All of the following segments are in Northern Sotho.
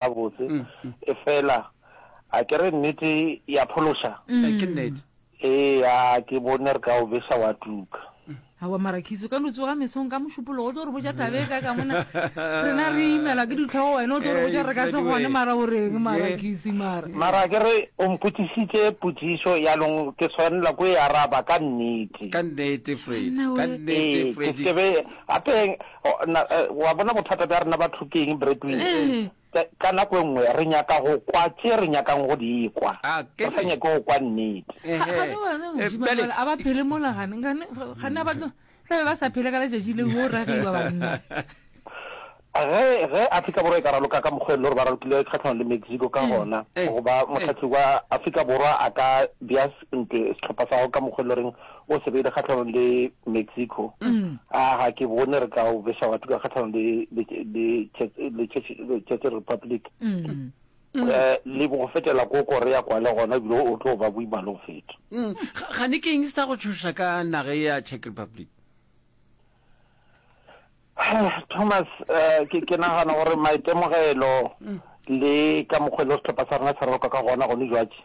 gabotse e fela a ke re nnete ya phološa ke nnete ee a ke bone re ka o besa wa tuka awa marakhiso ka lutso ga mesong ka mošupologo o tlo re boja tabe ka ka mona rena re imela ke ditlhogo wena o tlo re boja re ka se gone mara o reng marakhisi mara mara ke re o mpotsisitse potsiso yanong ke tshwanela ko e araba ka nnete ka nnete fredi ka nnete fredi gape O, na, e, wa bona bothata bja rena batho ke eng, Bradley? Ee. Ka, ka nako e nngwe re nyaka go kwa tše re nyakang go di kwa, A, ke re sa ne. nyake go kwa nnete. Ga- Ehe. gane wena Eh, modimo bjale- jwale a ba phele mola gane gane gane a ba tlo tla be ba sa phele ka letšatši leo o ragiwa banna Ge, ge Afrika Borwa e ka raloka ka mokgwa e le gore ba ralokile kgahlano le Mexico ka gona, eh, goba eh. mohlahliki wa Afrika Borwa a ka bea s- ntwe sehlopha sa gago ka mokgwa e le goreng o se beile kgatlhanong le Mexico a ga ke bone re ka o besa batho ka kgatlhanong le le- le Czech- le Czech- le Czech Republic um le bo go fetela ko korea kwa le gona ebile o tlo ba boima le go feta Mm, ga- ga ne ke eng se sa go tšhoša ka naga e ya czech republic thomas eh, ke ke nagana gore maitemogelo le ka mokgwa e le setlhopha sa rona se raloka ka gona gone jwatše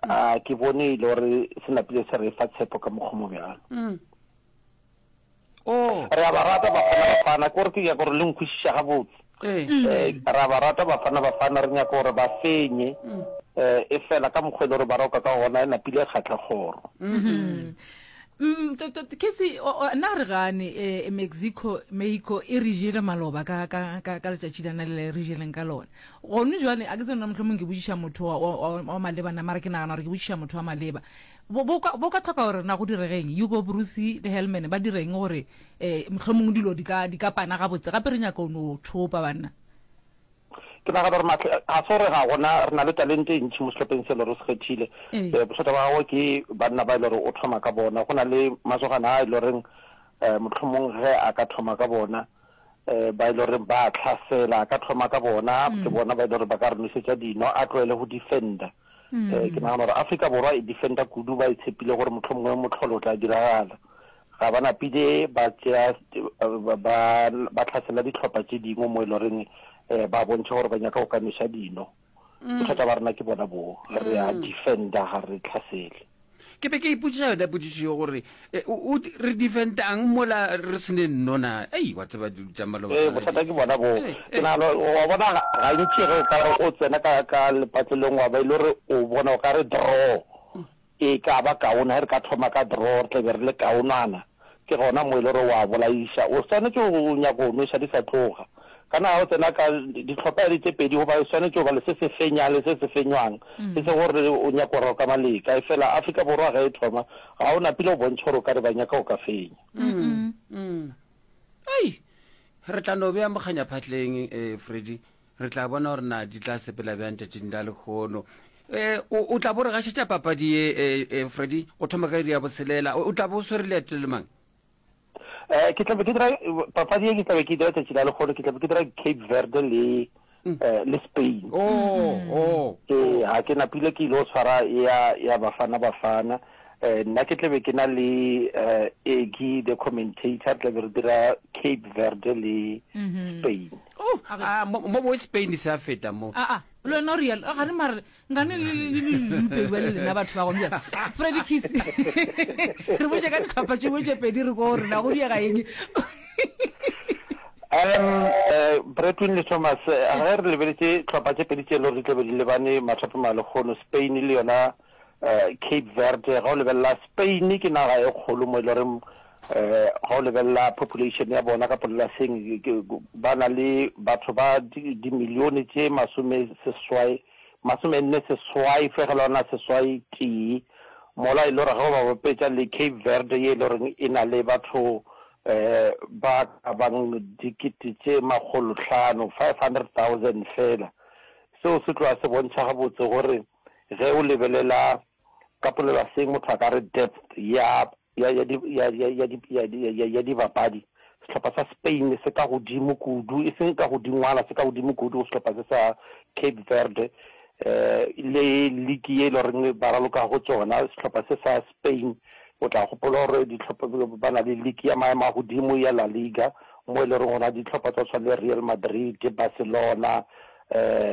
A ke bone e le gore se napile se re fa tshepo ka mokgwa mo bjalo. Mm. Oh. Re a ba rata Bafana Bafana, ke gore ke nyaka gore le nkwešiša gabotse. Eh. Eh, re a ba rata Bafana Bafana, re nyaka gore ba fenye. Mm. Eh, e fela ka mokgwa e le gore ba roka ka gona e napile e kgatlha kgoro. Mm-hmm. Mm, to- to- ke se o- o- nna re gane eh, mexico mexico e re jele maloba ka ka ka ka letšatši la na le re jeleng ka lona Gone jwale, a ke tsebe na mohlomong ke botšiša motho wa, wa, wa, wa maleba na, mara ke nagana gore ke botšiša motho wa maleba. Bo, bo ka, bo ka tlhoka gore na go diregeng? Hugo Broos le Hellman ba direng gore um mohlomong dilo di ka, di ka pana gabotse? Gape re nyaka o no thopa, banna. Ke nagana gore Matle, ga se gore ga gona, re na le talente e ntši mo sehlopheng se e le gore o se kgethile. Ee. Um bothata ba gagwe ke banna ba e le gore o thoma ka bona. Go na le masogana a e le goreng um mohlomong ge a ka thoma ka bona, um ba e le goreng ba a tlhasela ka thoma ka bona ke mm. bona ba e le gore ba ka re nosetsa dino a tlwaele go defenda um mm. eh, ke nagana gore africa borwa e defenda kudu ba e tshepile gore motlho mongwe motlholo o tla diragala ga ba napile ba tsea ba tlhasela ditlhopha tse dingwe mo e le goreng um ba bontšha gore ba nyaka go ka nosa dino Mm. Bothata ba rena ke bona boo, re a mm. defender ga re tlhasele. Ke be ke ipotsiša yona potsišo yo gore eh, re defendang mola re sene nnona ei wa tseba dilu tša maloba eh, bothata ke bona boo eh, ke nagana wa bona gantši ge o ka re o tsena ka lepatlelong wa ba e le gore o bona o ka re draw E ka ba kaone ge re ka thoma ka draw, re tla be re le kaonana. Ke gona mo e le gore o a bolaiša. O swanetše go nyaka go nweša di sa tloga. Ka na ga o tsena ka dihlopha ya di tše pedi goba o swanetše go ba le se se fenyang le se se fenywang. E se gore o nyaka go roka maleka. Efela Afrika Borwa ge e thoma, ga o napile go bontšha gore o ka re ba nyaka go ka fenya. Ai! Re tla no bea mokganyaphatleng, Freddy. re tla bona gore na di tla sepela bjang tšatšing la lekgono Eh, o o tla bo re gašetša papadi ye eh, eh, freddy go thoma ka iri ya boselela o o tla bo o swere leeto le mang Eh, ke tlabe ke dira papadi e ke tlabe ke dira tšatši la lekgolo ke tlabe ke dira cape verde le eh, le spain o o ee ga ke napile ke ile go tshwara ya ya bafana bafana eh nna ke tlabe ke na le eh egi the commentator tlabe re dira cape verde le spain Oh, a re- a, mo mo bo Spain se a feta mo. a a le wena o real ga re mare ngane le le- le- le- le mpedi ba le lena batho ba gone bjale freddy kiss re botse ka ditlhopha tše botse pedi re ko rena go diega eng um eh, bretwin le thomas eh, ge re lebeletse tlhopha tše pedi tše e le gore di tlabe di lebane mathope ma lekgono spain le yona uh, Cape Verde ga o lebelela Spain ke naga e kgolo mo e loreng um eh, ga o lebelela population ya bona ka polelaseng ba na le batho ba dimilione tše masome seswai masome nne seswai fegelwana seswai tee mola e le gore ga o ba bapetša le Cape Verde ye e le goreng e na le batho eh ba ka bang dikete tše makgolo tlhano five hundred thousand fela seo se tloga se bontšha gabotse gore ge o lebelela ka polelaseng motho a ka re depth ya ya ya di ya ya ya di ya di ya ya dibapadi sehlopha sa Spain se ka godimo kudu e seng ka godingwana se ka godimo kudu go sehlopha se sa Cape Verde eh le league ye e le goreng ba raloka go tsona sehlopha se sa Spain o tla gopola gore ditlhopha ba na le league ya maemo a godimo ya La Liga mo e le goreng gona ditlhopha tsa tshwana le Real Madrid Barcelona eh